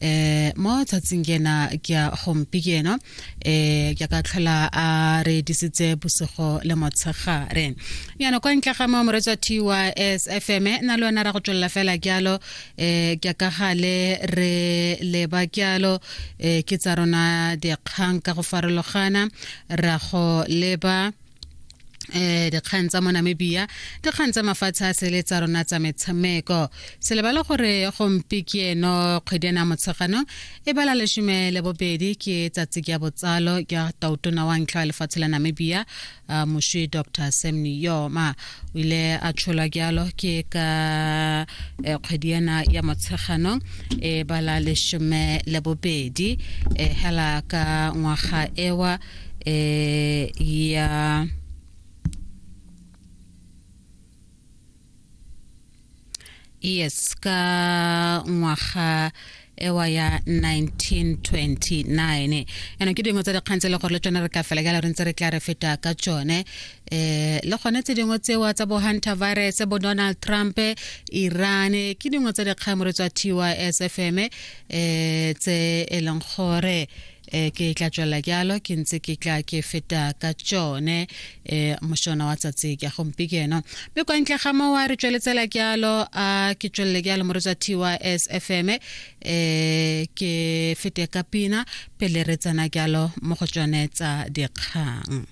eh mo tshatsing ke ena ke a gompi ke eno eh ke ka tlhola a re disitse bosigo le motshegare yana kwa ntle ga mo moretswa TYS FM e, na le wena ra go tswella fela kyalo eh ke ka gale re le ba kyalo eh ke tsa rona dikgang ka go farologana ra go leba eh dikgang tsa mo namibia dikgang tsa mafatshe a sele tsa rona tsa metshameko se lebale gore gompi ke eno kgwedi ena motshegano e bala lesome le bobedi ke tsatsi ke ya botsalo ke tautona wa ntlha wa lefatshe la namibia uh, moswi dr sam niyoma o ile a tsholwa jalo ke ka eh, kgwedi ena ya motshegano e bala lesome le bobedi eh, hela ka ngwaga ewa eh, y a... yes ka ngwaga ewa ya 1929 yana ke dingwe tsa dikgang tse le gore le tsone re ka fela ka le re ntse re tla re feta ka tsone eh le gone tse dingwe tsewa tsa bo hunter virus bo donald trump iran ke dingwe tsa dikgang mo re tswa tys fm eh tse e leng gore e ke tla tswela jalo ke ntse ke tla ke feta ka tsone e mošona wa tsatsi ke gompieno mme kwa ntle ga mowa re tsweletsela jalo a ke tswelele jalo moretsa tys fm e ke fete ka pina pele re tsena jalo mo go tsone tsa dikgang